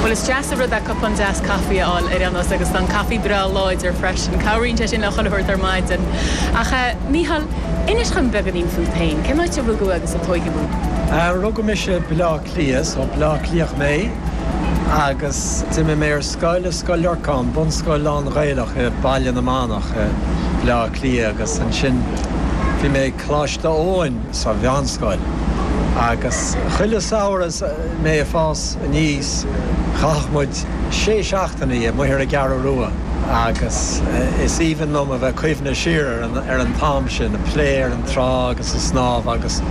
Bhuel, is deas an rud é cupán deas caife a fháil ar aon nós agus tá an caife breá láidir freisin. Cabhraíonn sé sin le chuile shórt ar maidin. Ach eh, Mícheál, inis dhom beagáinín fút féin. Cén áit a rugadh agus a tóigeadh thú? Eh, rugadh mise i Bleá Cliath, so Bleá Cliathach mé agus d'imigh mé ar scoil i Scoil Lorcáin, bunscoil lán-Ghaelach i Baile na Manach. i mBleá Cliath agus ansin bhí mé ag Coláiste Eoin sa mheánscoil agus chuile samhradh is mé ag fás aníos chaitheadh muid sé seachtainí amuigh ar an gCeathrú Rua agus is aoibhinn liom a bheith ag cuimhneamh siar ar an t-am sin, ag plé ar an trá agus ag snámh agus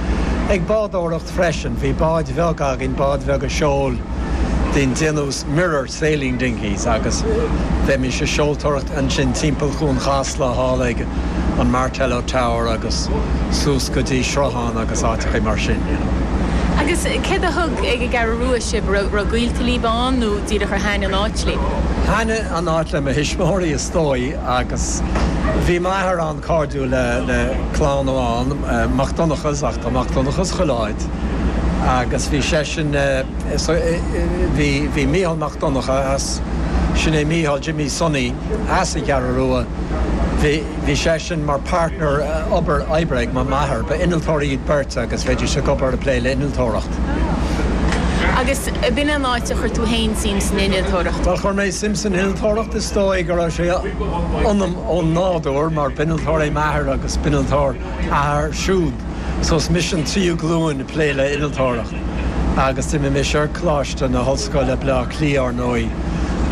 ag bádóireacht freisin, bhí báid bheaga againn, báid bheaga seoil den déantús 'Mirror'. 'sailing dinghies' agus bheimis ag seoltóireacht ansin timpeall chuan Chasla, thall ag an Martello Tower agus suas go dtí Sruthán agus áiteachaí mar sin, you know. Agus céard a thug ag an gCeathrú Rua sibh? Raibh gaolta libh ann nó díreach ar thaitn an áit libh? Thaitn an áit le mo thuismitheoirí is dóigh agus bhí m'athair an-cairdiúil le clann amháin, Mac Donnchadhas, ach tá Mac Donnchadhas chuile áit, agus bhí seisean, bhí Mícheál Mac Donncha as, sin é Mícheál Jimmy Sonny as an gCeathrú Rua, bhí, bhí seisean mar partner obair, oibre ag m'athair, ba innealtóirí iad beirt agus bheidís ag obair, ag plé le innealtóireacht. Agus b'in é an áit a chuir tú fhéin suim san innealtóireacht? Chuir mé suim san innealtóireacht, is dóigh go raibh sé ionam ó nádúr mar b'innealtóir é m'athair agus b'innealtóir a athair siúd, so is mise an tríú glúin ag plé le innealtóireacht. Agus d'imigh mise ar Coláiste na hOllscoile, Baile Átha Cliath, ár ndóigh,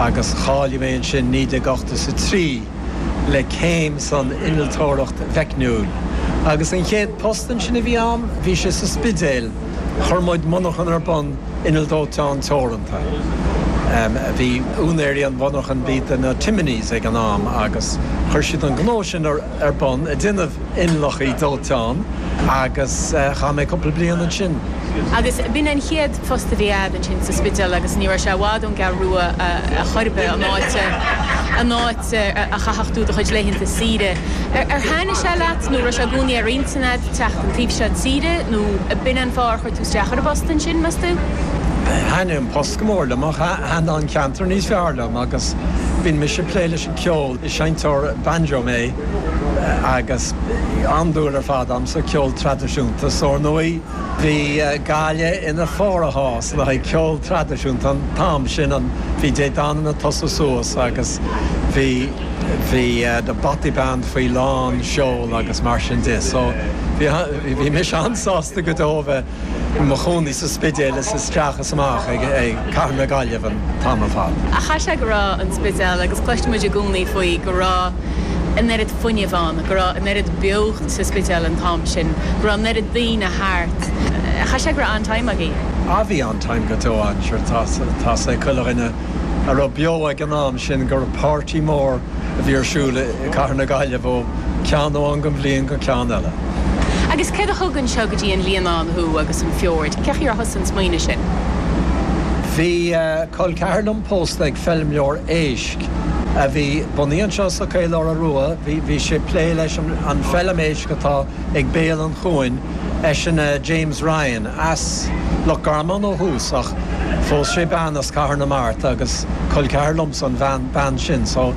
agus cháiligh mé ansin 1983 le céim san Innealtóireacht Mheicniúil. Agus an chéad phost ansin a bhí a'm, bhí sé sa Spidéal, chuir muid monarcha ar bun, Inneall Dóiteáin Teoranta. A bhí úinéirí an mhonarchan, b'iad na Timonies ag an am, agus chuir siad an gnó sin ar. ar bun ag déanamh inneallachaí dóiteáin agus chaith mé cúpla bliain ansin. Agus b'in an chéad phost a bhí a'd ansin sa Spidéal agus ní raibh sé i bhfad ón gCeathrú Rua chor ar bith, an áit an áit a chaithfeadh tú do chuid laethanta saoire. Ar thaitnigh sé leat nó raibh sé i gcónaí ar intinn a'd teacht an taobh seo tíre nó b'in an fáth ar chuir tú isteach ar an bpost ansin, meas tú? Thaitnigh an post go mór liom ach thaitnigh an ceantar níos fearr liom agus bhínn mise ag plé leis an cheol. Is seinnteoir banjo mé agus an-dúil ar fad agam sa cheol traidisiúnta so ar ndóigh bhí Gaillimh ina fíor-chás le haghaidh ceol traidisiúnta an t-am sin a bhí Dé Danann ag tosú suas agus bhí bhí The Bothy Band faoi lán seol agus mar sin de so bhí bhí mise an-sásta go deo a bheith i mo chónaí sa Spidéal is isteach is amach ag cathair na Gaillimhe an t-am ar fad. Ach chaith sé go raibh an Spidéal, agus cloistear muid i gcónaí faoi, go raibh an oiread fuinnimh ann, go raibh an oiread beocht sa Spidéal an t-am sin, go raibh an oiread daoine thart. Chaith sé go raibh an-time agaibh. Á, bhí an-time go deo ann, sure. Tá fhios ag chuile dhuine a raibh beo ag an am sin gurb páirtí mór a bhí ar siúl i gcathair na Gaillimhe ó cheann amháin den bhliain go ceann eile. Agus céard a thug anseo go dtí an Líonán thú agus an fiord? Cé chaoi ar thosaigh an smaoineamh sin? Bhí col ceathar liom pósta ag feilmleoir éisc a bhí, bunaidh, anseo sa Chaoláire Rua. Bhí sé ag plé leis an bhfeilm éisc atá ag béal an chuain, eisean James Ryan, as Loch Garman ó thús ach phós sé bean as Cathair na Mart agus col ceathar liomsa an bhean sin. So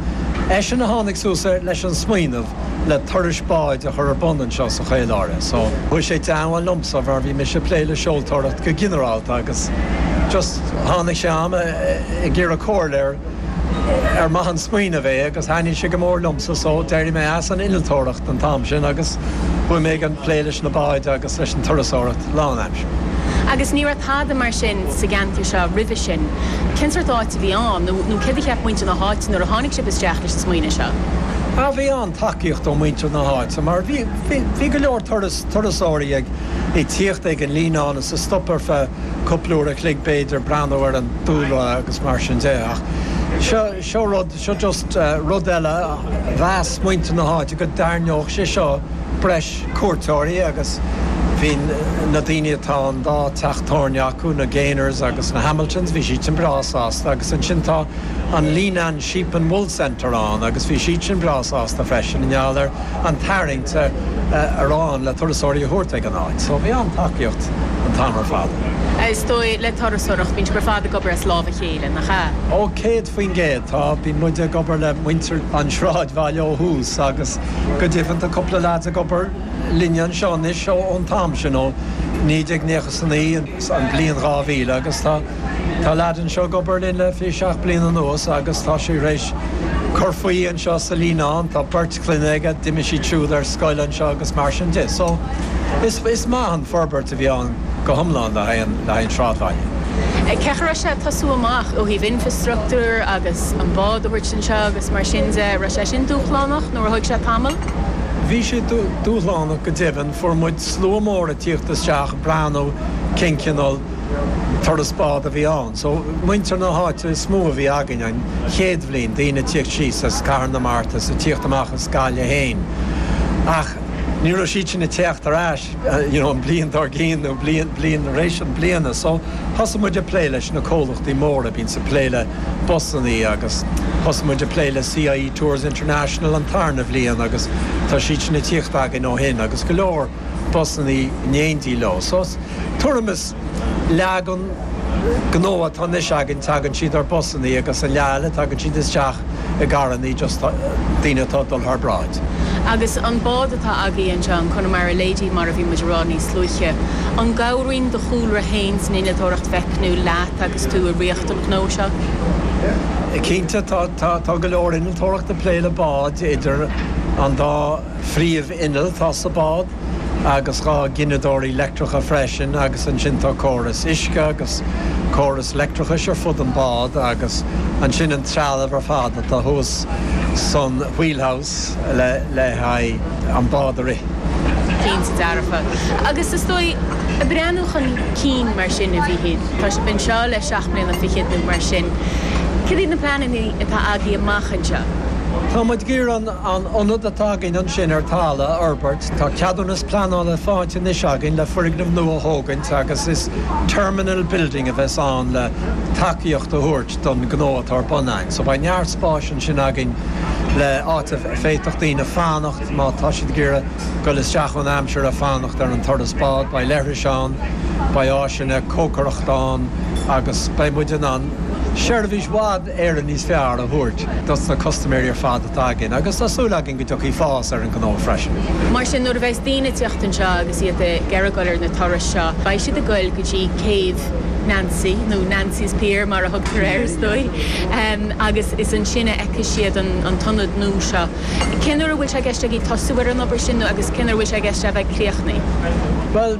eisean a tháinig suas leis an smaoineamh. le turais báid a chur ar bun anseo sa Chaoláire. So, chuaigh sé in éindí liomsa mar bhí mise ag plé le seoltóireacht go ginearálta agus just tháinig sé a'm ag iarraidh comhairle ar mhaith an smaoineamh é agus thaitnigh sé go mór liomsa so d'éirigh mé as an innealtóireacht an t-am sin agus chuaigh mé ag an, plé leis na báid agus. leis an turasóireacht lánaimseartha. Agus ní raibh tada mar sin sa gceantar seo roimhe sin. Cén sórt áit a bhí ann, nó céard a cheap muintir na háite nuair a tháinig sibh isteach leis an smaoineamh seo? Bhuel, bhí an-tacaíocht ó mhuintir na háite, mar bhí bhí go leor turasóirí ag tíocht ag an Líonán is ag stop ar feadh cúpla uair a chloig, b'fhéidir, breathnú ar an dúlra agus mar sin de. Ach seo rud. Seo just rud eile, mheas muintir na háite go dtarraingeodh sé seo breis cuairteoirí agus bhí na daoine atá an dá teach tábhairne acu, na Gaynors agus na Hamiltons, bhí siad sin breá sásta agus ansin tá an Leenane Sheep and Wool Centre ann agus bhí siad sin breá sásta freisin i ngeall ar an tarraingt a raibh ann le turasóirí a thabhairt ag an áit. So bhí an-tacaíocht an t-am ar fad. Is dóigh le turasóireacht, bíonn sibh ar fad ag obair as lámh a chéile. Ó, céad faoin gcéad, tá. Bhí muid ag obair le muintir an tsráidbhaile ó thús agus go deimhin tá cúpla lads ag obair linne anseo anois ón t-am sin, ó naoi déag naocha 's a naoi, an bhliain dhá mhíle, agus tá lad anseo ag obair linn le fiche seacht bliana anuas agus tá sé tar éis cur faoi anseo sa Líonán, tá beirt clainne aige, d'imigh siad siúd ar scoil anseo agus mar sin de. So, is maith an fhorbairt. a bhí ann go hiomlán le haghaidh an tsráidbhaile. Cé go raibh sé ag tosú amach ó thaobh infreastruchtúir agus an bád a thabhairt anseo agus mar sin de, an raibh sé sin dúshlánach nó ar thóg sé tamall? Bhí sé dúshlánach go deimhin. Fuair muid slua mór ag tíocht isteach ag breathnú cén cineál turas bád a bhí ann. So, muintir na háite is mó a bhí againn an chéad bhliain, daoine ag tíocht síos as Cathair na Mart is ag tíocht amach as Gaillimh féin. Ach ní raibh siad sin ag tíocht ar ais. you know an bhliain dár gcionn nó bliain bliain tar éis an bliana so thosaigh muid ag plé leis na comhlachtaí móra a bhíonns ag plé le busannaí agus thosaigh muid ag plé le CIE Tours International an tarna bhliain agus tá siad sin ag tíocht againn ó shin agus go leor busannaí in éindí leo so tuairim is leath den gnó atá anois againn tagann siad ar busannaí agus an leath eile tagann siad isteach i gcarrannaí just daoine atá ag dul thar bráid. Agus an bád atá agaibh anseo, an Connemara Lady mar a bhí muid ag rá níos luaithe, an gcabhraíonn do chúlra fhéin san innealtóireacht mheicniúil leat agus tú ag rith an ghnó seo? Cinnte tá, tá, tá go leor innealtóireacht ag plé le báid idir an dá phríomh inneall atá sa bád, agus dhá ghineadóirí leictreacha freisin, agus ansin tá córas uisce agus córas leictreachais ar fud an bád, agus ansin an trealamh ar fad atá thuas san wheelhouse le haghaidh an bád a rith. Cinnte dearfa. Agus is dóigh, ag breathnú chun cinn mar sin, a Mhíchíl, tá sibh anseo le seacht mbliana fichead nó mar sin, cad iad na pleananna atá agaibh amach anseo? Tá muid ag iarraidh an. An ionad atá againn ansin ar talamh a fhorbairt, tá ceadúnas pleanála faighte anois againn le foirgneamh nua a thógaint agus is 'terminal building' a bheas ann le tacaíocht a thabhairt don ghnó atá ar bun againn. So beidh neart spáis ansin againn le áit a bhféadfadh daoine fanacht má tá siad ag iarraidh goil isteach ón aimsir ag fanacht ar an turas bád, beidh leithris ann, beidh áiseanna cócaireachta ann agus beidh muid in ann seirbhís i bhfad. Éirinn níos fearr a thabhairt dos na custaiméirí ar fad atá againn agus tá súil againn go dtiocfaidh fás ar an ngnó freisin. Mar sin, nuair a bheas daoine ag teacht anseo agus iad ag iarraidh goil ar na turais seo, beidh siad ag goil go dtí Céibh Nancy, nó Nancy's Pier mar a thugtar air is dóigh, agus is ansin a fheicfidh siad an t-ionad nua seo. Cén uair a bhfuil sé i gceist agaibh tosú ar an obair sin nó agus cén uair a bhfuil sé i gceist é a bheith críochnaithe? Bhuel,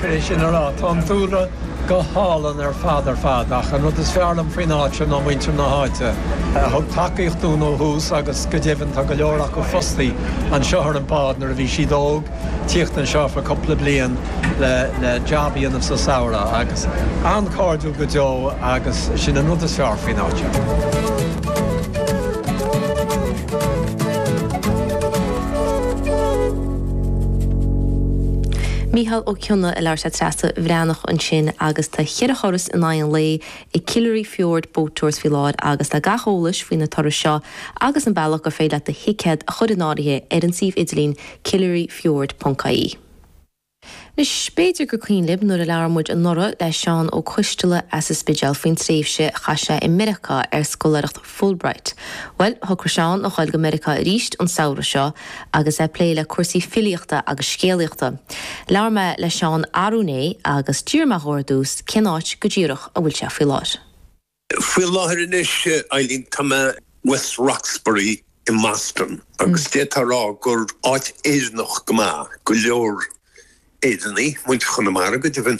Tar éis sin ar fad, tá an dúlra go hálainn ar fad ar fad, ach an rud is fearr liom faoin áit seo ná muintir na háite, a thug tacaíocht dúinn ó thús agus go deimhin tá go leor acu fostaithe anseo ar an mbád nuair a bhí siad óg, tíocht anseo for cúpla bliain le job a dhéanamh sa samhradh agus an-cairdiúil go deo agus sin an rud is fearr faoin áit seo. Mícheál Ó Cionnaith ag labhairt le Treasa Bhreathnach ansin agus tá ceithre thuras in aghaidh an lae ag Killary Fjord Boat Tours faoi láthair agus tá gach eolas faoi na turais seo agus an bealach gur féidir leat do thicéad a chur in áirithe ar an suíomh idirlín killaryfjord.ie. Anois, b'fhéidir gur cuimhin libh nuair a labhair muid anuraidh le Seán Ó Coistealla as an Spidéal faoin tréimhse a chaith sé i Meiriceá ar scoláireacht Fulbright. Bhuel, thograigh Seán a ghoil go Meiriceá arís an samhradh seo agus é ag plé le cúrsaí filíochta agus scéalaíochta. Labhair mé le Seán arú inné agus d'iarr mé dhó ar dtús cén áit go díreach a bhfuil sé faoi láthair. Faoi láthair anois, a Eibhlín, tá mé i West Roxbury i mBoston agus d'fhéadfá a rá gur áit Éireannach go maith, go leor Éireannaigh, muintir Chonamara go deimhin,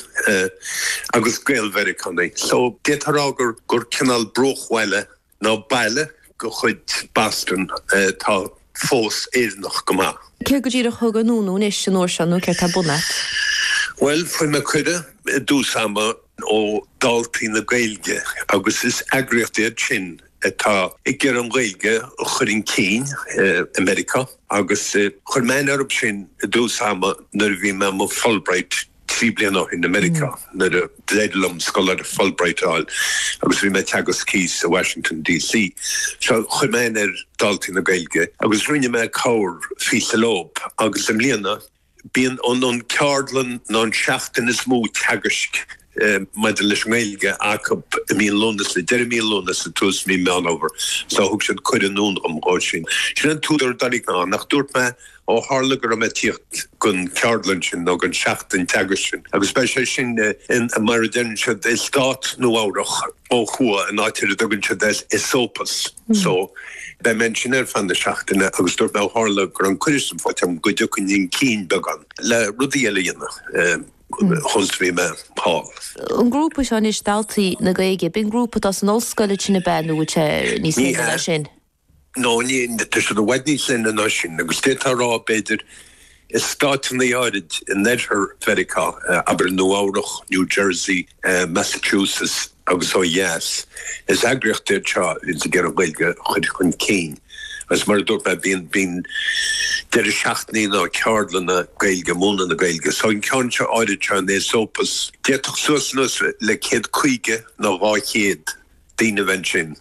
agus Gael-Mheiriceánaigh. So, d'fhéadfá a rá gur cineál bruachbhaile, nó baile, de chuid Boston atá fós Éireannach go maith. Céard go díreach thug anonn thú anois an uair seo nó céard atá ar bun agat? Bhuel, fuair mé cuireadh i dtús ama ó Daltaí na Gaeilge agus is eagraíocht iad sin atá ag iarraidh an Ghaeilge a chur chun cinn i Meiriceá agus chuir mé aithne orthu sin i dtús ama nuair a bhí mé i mo Fulbright Trí bliana ó shin i Meiriceá, nuair a d'éirigh liom scoláireacht Fulbright a fháil agus bhí mé ag teagasc thíos i Washington DC, so chuir mé aithne ar Daltaí na Gaeilge agus rinne mé corrphíosa leob. Agus i mbliana, bíonn an ceardlann nó an seachtain is mó teagaisc maidir leis an nGaeilge acu i mí an Lúnasa, deireadh mí Lúnasa, tús mí Meán Fhómhair. So thug siad cuireadh anonn dom. Sin an t-údar, dáiríre, ach dúirt mé. Ó tharla go raibh mé ag tíocht gon cheardlann sin nó gon tseachtain teagaisc sin, agus beidh sé sin in, mar a deireann siad, i Stát Nua-Eabhrac, ó thuaidh, in áit ar a dtugann siad Esopus. So, beidh mé ansin ar feadh na seachtaine agus dúirt mé, ó tharla go raibh an cuireadh sin faighte agam, go dtiocfainn chun cinn beagán le rudaí eile a dhéanamh chúns a bhí mé thall. An grúpa seo anois, Daltaí na Gaeilge, ab in grúpa atá san ollscoil ansin ab ea nó níos leithne ná sin? Ní hea. No, ní, tá siad i bhfad níos leithne ná sin, agus d'fhéadfá a rá, b'fhéidir, i stáiteanna áirid in oirthear Mheiriceá, abair Nua-Eabhrac, New Jersey, Massachusetts, agus ó dheas, is eagraíocht iad seo atá ag iarraidh an Ghaeilge a chur chun cinn, agus mar a dúirt mé, bíonn, bíonn deireadh seachtaine nó ceardlanna Gaeilge, múineadh na Gaeilge, so an ceann seo áirid seo in Esopus, d'fhéadfadh suas anuas le céad caoga nó dhá chéad, daoine a bheith ansin.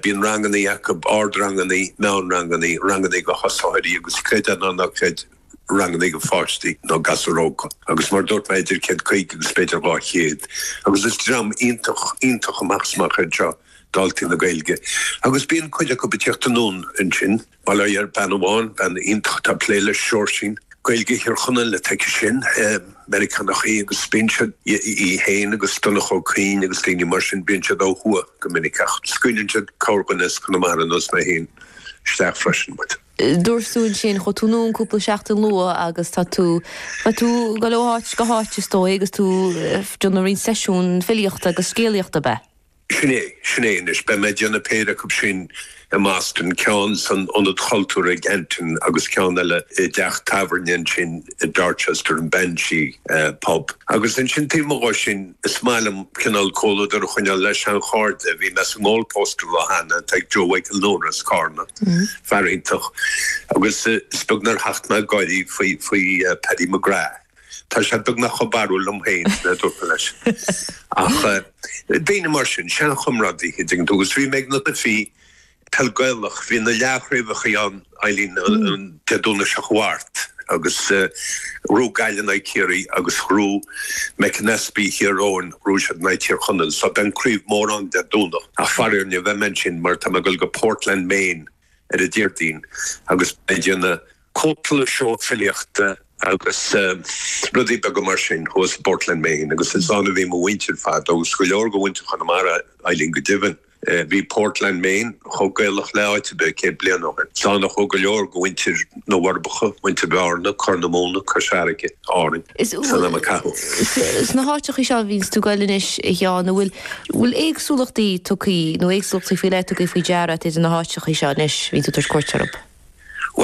Bíonn rangannaí acu, ardrangannaí, meánrangannaí, rangannaí do thosaitheoirí agus creid é nó ná creid rangannaí do pháistí nó gasúir óga agus mar a dúirt mé idir céad caoga agus b'fhéidir dhá chéad agus is dream iontach, iontach amach is amach iad seo, Daltaí na Gaeilge. Agus bíonn cuid acu ag tíocht anonn ansin. Mar a déarfá bean amháin, bean iontach atá ag plé le Seoirsín, Gaeilge Thír Chonaill ag teacht aici sin, Meiriceánach í agus bíonn siad, í féin agus Donncha Ó Cuinn agus daoine mar sin, bíonn siad ó thuaidh go minic ach scaoileann siad corrdhuine as Conamara ar nós mé féin isteach freisin. But. Dúirt tú ansin, chuaigh tú ann cúpla seachtain luath agus tá tú, bheadh tú ag dul ó áit go háit is dóigh agus tú ag déanamh roinnt seisiún filíochta agus scéalaíochta, ab ea? Sin é, sin é anois. Beidh mé ag déanamh péire acu sin i mBoston, ceann san Ionad Chultúir i gCanton agus ceann eile i dteach tábhairne ansin i Dorchester, an Banshee Pub. Agus ansin taobh amuigh dhe sin, is maith liom cineál comhluadar a choinneáil le seanchairde. Bhí mé sa nGoal Post an lá cheana, atá ag Joe Mhichael Nóra as Carna, fear iontach, agus is beag nár thacht mé ag gáirí faoi Paddy McGrath. Tá sé beagnach chomh barrúil liom féin a dúirt mé leis. Ach daoine mar sin, seanchomrádaithe a déanann tú agus bhí mé ag na cluichí, peil Gaelach, bhí na leathchraobhachaí ann, Eileen, an Dé Domhnaigh seo chuaigh thart agus bhí Gaillimh in aghaidh Chiarraí agus bhí McAnespie Thír Eoghain, bhí siad in aghaidh Thír Chonaill so beidh an craobh mór ann Dé Domhnach ach faraor ní bheidh mé ansin mar tá mé ag dul go Portland Maine, ar an Déardaoin agus ag déanamh cúpla seó filíochta agus rudaí beaga mar sin thuas i bPortland, Maine agus is ann a bhí mo mhuintir ar fad agus go leor de mhuintir Chonamara, Eileen go deimhin. Bhí Portland, Maine chomh Gaelach le áit ar bith céad bliain ó shin. Is ann a chuaigh go leor de mhuintir na bhForbacha, muintir Bhearna, Corr na Móna, Cois Fharraige. Árainn san am a caitheadh. Sna háiteachaí seo a bhíonns tú ag goil anois, a Sheáin, an bhfuil éagsúlachtaí tugthaí, nó éagsúlachtaí faoi leith tugthaí faoi deara a't idir na háiteachaí seo anois a bhíonn tú ag tabhairt cuairt orthub?